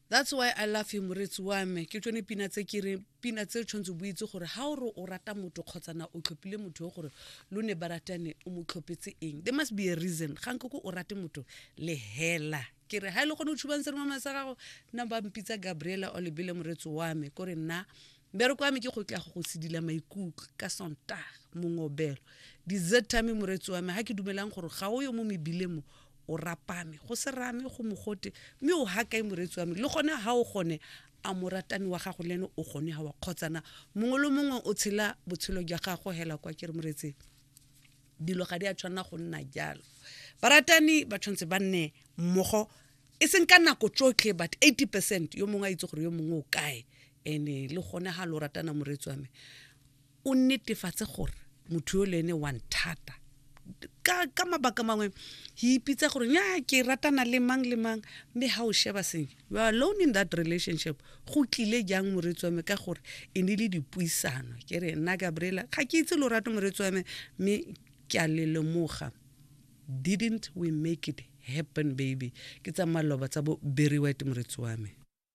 that's why i love you moretsi wa me ke tsone pina tse ke re pina tse tshwanetse bo itse gore ga o re o rata motho kgotsa na o tlhophile motho yo gore lo ne ba ratane o mo tlhophetse eng there must be a reason ga nke ko o rate motho le hela ke re ga e le gone o tshubang seremama sa gago nna ba mpitsa gabriela o lebele moretsi wa me kore nna Mbereko wa me ke go tla go go sedila maikutlo ka Sontaga, mongobelo, dizethame, moreetsi wa me, ga ke dumelang gore ga o yo mo mebileng mo, o rapame, go se rame, go mogote, mme o ha kae moreetsi wa me, le gone ga o gone, a moratani wa gago le ene o gone ga wa kgotsana, mongwe le mongwe o tshela botshelo jwa gago hela kwa ke re moreetseng dilo ga di a tshwanela go nna jalo baratani ba tshwanetse ba nne mmogo e seng ka nako tsotlhe but 80 percent yo mongwe a itse gore yo mongwe o kae Ene le gone ga lo ratana moreetsi wa me o netefatse gore motho yo le ene wa nthata ka, ka mabaka mangwe he ipitsa gore nya ke ratana le mang le mang mme ga o sheba senye you are alone in that relationship go tlile jang moreetsi wa me ka gore e ne le dipuisano ke re nna gabriela ga ke itse lorato moreetsi wa me mme ke a le lemoga didn't we make it happen baby ke tsa maloba tsa bo berry white moreetsi wa me